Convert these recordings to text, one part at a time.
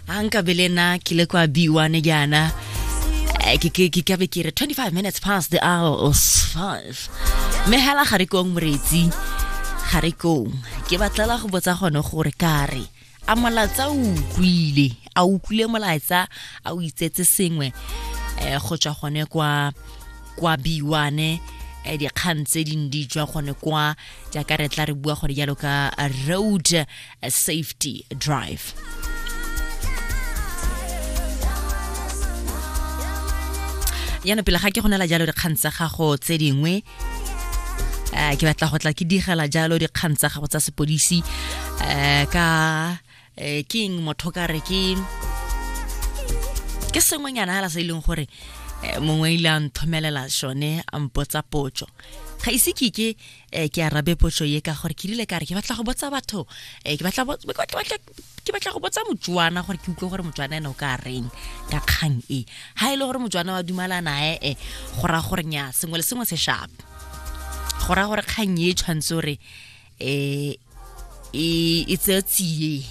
a nkabe le na ke le kwa b1 jaana Eh, ke ke- ke kabe ke re 25 minutes past the hour of 5 mme hela ga re kong moretsi ga re kong ke batlela go botsa gone gore ka re a molatsa o utlwile a utlwile molatsa a o itsetse sengwe eh go tswa gone kwa kwa b1 eh, dikgang tse dingwe di tswa gone kwa jaaka re tla re bua gone jalo ka road a safety drive. yana pele ga ke go nela jalo dikgang tsa gago tse dingwe um ke batla go tla ke digela jalo dikgang tsa gago tsa sepodisi um ka um keng motho ka re ke ke sengwenyana fela se e leng gore mongwe ile a nthomelela sone a mpotsa potso ga ise ke ke eh ke arabe potso ye ka gore ke rile ka re ke batla go botsa batho eh ke batla ke batla go botsa motswana gore ke utlwe gore motswana ene o ka reng ka kgang e ha e le gore motswana wa dumalana e e go ra gore nya sengwe le sengwe se sharp go ra gore kgang e tshwanetse gore eh e e tsetsiye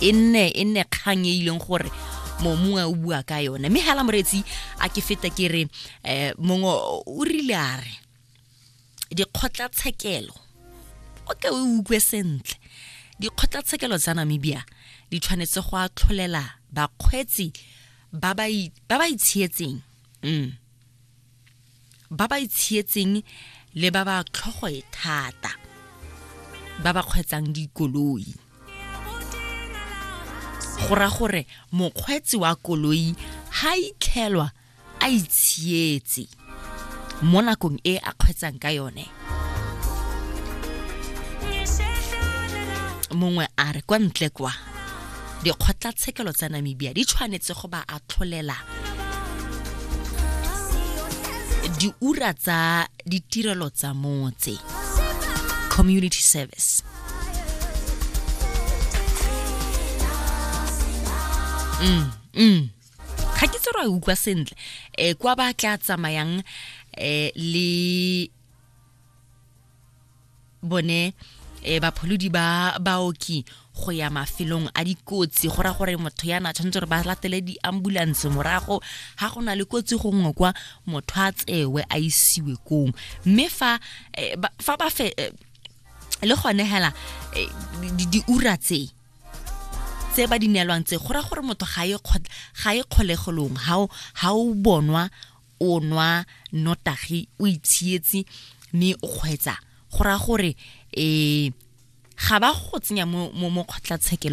e nne e nne kgang e ileng gore momongwe o bua ka yone mme hela moretsi a ke feta ke re um mongwe o rile a re dikgotlatshekelo o ke o utlwe sentle dikgotlatshekelo tsa namibia di tshwanetse go atlholela bakgweetsi ba ba itshietseng mm. ba ba itshietseng le ba ba tlhogoe thata ba ba kgweetsang dikoloi go ra gore mokgweetsi wa koloi ha itlhelwa a itshietse mo nakong e a kgwetsang ka yone mongwe a re kwa ntle kwa dikgotlatshekelo tsa namibia di tshwanetse go ba atlholela diura tsa ditirelo tsa motse community service mm, mm. ga ke tse ra utlwa sentle um kwa ba tla tsamayang um le bone um bapholodi ba baoki go ya mafelong a dikotsi go ra gore motho ya na tshwanetse gore ba latele di-ambulance morago ga go na le kotsi gongwe kwa motho a tsewe a isiwe kong mme fa eh, fa ba fe eh, le gone hela eh, diura tse tse ba di neelwang tse go ra gore motho ga e ga e kgolegolong ha ha o bonwa o nwa notagi o itshietse mme o kgwetsa go ra gore eh ga ba go tsenya mo mo kgotlatshekelo